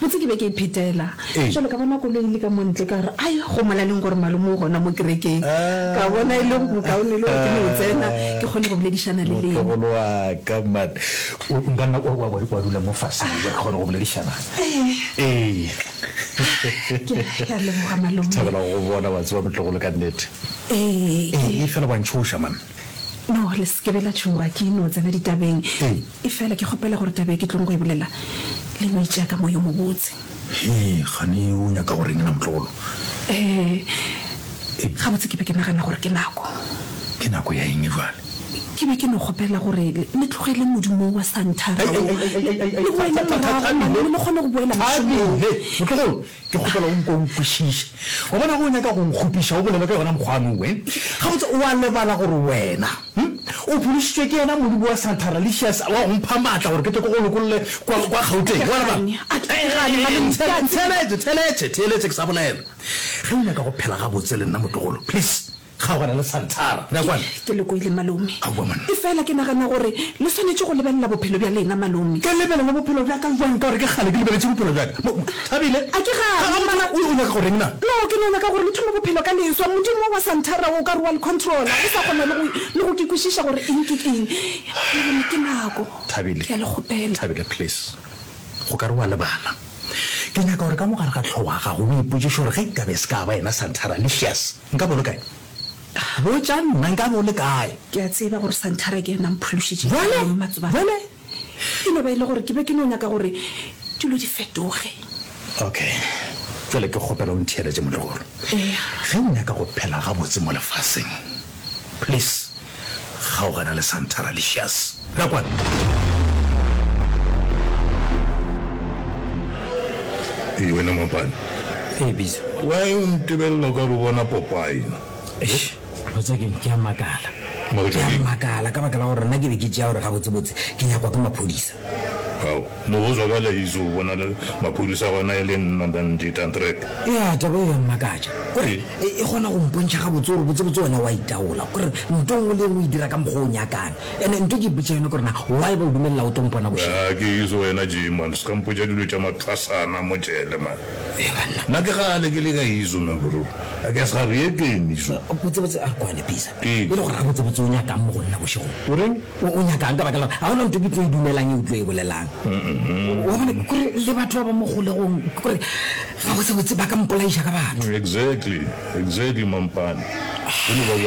Botse ke be ke iphetela bjale, ka bona koloi e le ka mo ntle, ka re, Ai, go molaleng gore malome o gona mo kerekeng. Ka bona e le bokaone le gore ke no tsena ke kgone go boledišana le lena. Motlogolo wa ka, man, o nka nna kwa wa wa dula mo fase re kgone go boledišana. Ee, ke ke a leboga malome. Thabela go go bona, wa tseba, motlogolo, ka nnete. Ee, ee, fela wa ntšhoša, man. No, le se ke be la tšhoga, ke no tsena ditabeng. Efela ke kgopela gore taba e ke tlogo go e bolela le no e tšea ka moya o mobotse. Hee, kgane o nyaka go reng na Motlogolo? Ee, gabotse ke be ke nagana gore ke nako. Ke nako ya eng bjale? Ke be ke no kgopela gore le tlogele modumo wo wa Santhara wo, le boele morago mane le kgone go boela mošomong. Thabile! Motlogolo, Ke kgopela o nke o nkwešiše. Wa bona, ge o nyaka go nkgopiša, o bolele ka yona mokgwano we. Gabotse, o a lebala gore wena o phološitšwe ke yena Modimo wa Santa Ralicious wa go mpha maatla gore ke tle ke go lokolle kwa Gauteng? Wa lebala? Theeletše, theeletše, theeletše ke sa bolela. Ge o nyaka go phela gabotse le nna, motlogolo, please. Kgaogana le Santara, bja kwana. Ke le kwele, Malome. Aowa, monna. Efela ke nagana gore le swanetše go lebelela bophelo bja lena, Malome. Ke lebelele bophelo bja ka bjang ka gore ke kgale ke lebeletše bophelo bja ka? Mo, Thabile? A ke gane, Ga, ga go tšwa. O, o nyaka go reng na? No, ke no nyaka gore le thome bophelo ka leswa. Modimo wo wa Santara o ka re wa le controla, le sa kgona le go, le go ke kwešiša gore eng ke eng. Malome, ke nako. Thabile. Ke a le kgopela. Thabile, please. Go ka re wa lebala. Ke nyaka gore ka mo gare ga hlogo ya gago o ipotšiše gore ge nkabe e se ka ba yena Santara, Lucius, Nka bo le kae? Botša nna, nka bo le kae? Ke a tseba gore Santhara ke yena a mphološitšego Bjale, maemong matsobane. bjale. E no ba e le gore ke be ke no nyaka gore dilo di fetoge. Okay. Bjale ke kgopela o ntheeletše, molegolo. Eya. Ge o nyaka go phela gabotse mo lefaseng, please, Kgaogana le Santara Licious. Tla kwano. Ee, wena mampane. Ee, Bizo. Why o ntebelela o ka re o bona Popeye? Eish, botsa keng, ke a makala. Makatša Ke a keng? makala ka baka la gore nna ke be ke tšea gore gabotsebotse ke nyakwa ke maphodisa. Mo go zwa ka laizo bona le maphodisa gona e le nna Nandi Tantrek. Eya, taba eo ya mmakatša. Kore e kgona go mpontšha gabotse gore botsebotse wena wa itaola, kore nto nngwe le e nngwe o e dira ka mokgwa o nyakang. Ene nto ke ipotša yona kore na why ba o dumelela o tlo mpona bošego? Ga ke itse wena Jay man, ska mpotša dilo tša mathwasana mo jele man. Ee banna. Nna ke kgale ke le ka izo man bro, I guess ga re ye teng izo. Botsebotse a re kwane Pisa, e le gore gabotsebotse o nyakang mo go nna bošegong? O reng? O, o nyaka'ng ka baka la gore ga gona ntho ke tlo e dumelang e o tlo e bolelang? Wa bona, ke gore le batho ba ba mo kgolegong, ke gore gabotse-botse ba ka mpolaiša ka batho. Exactly, exactly, Mampane. Ke no ba ba.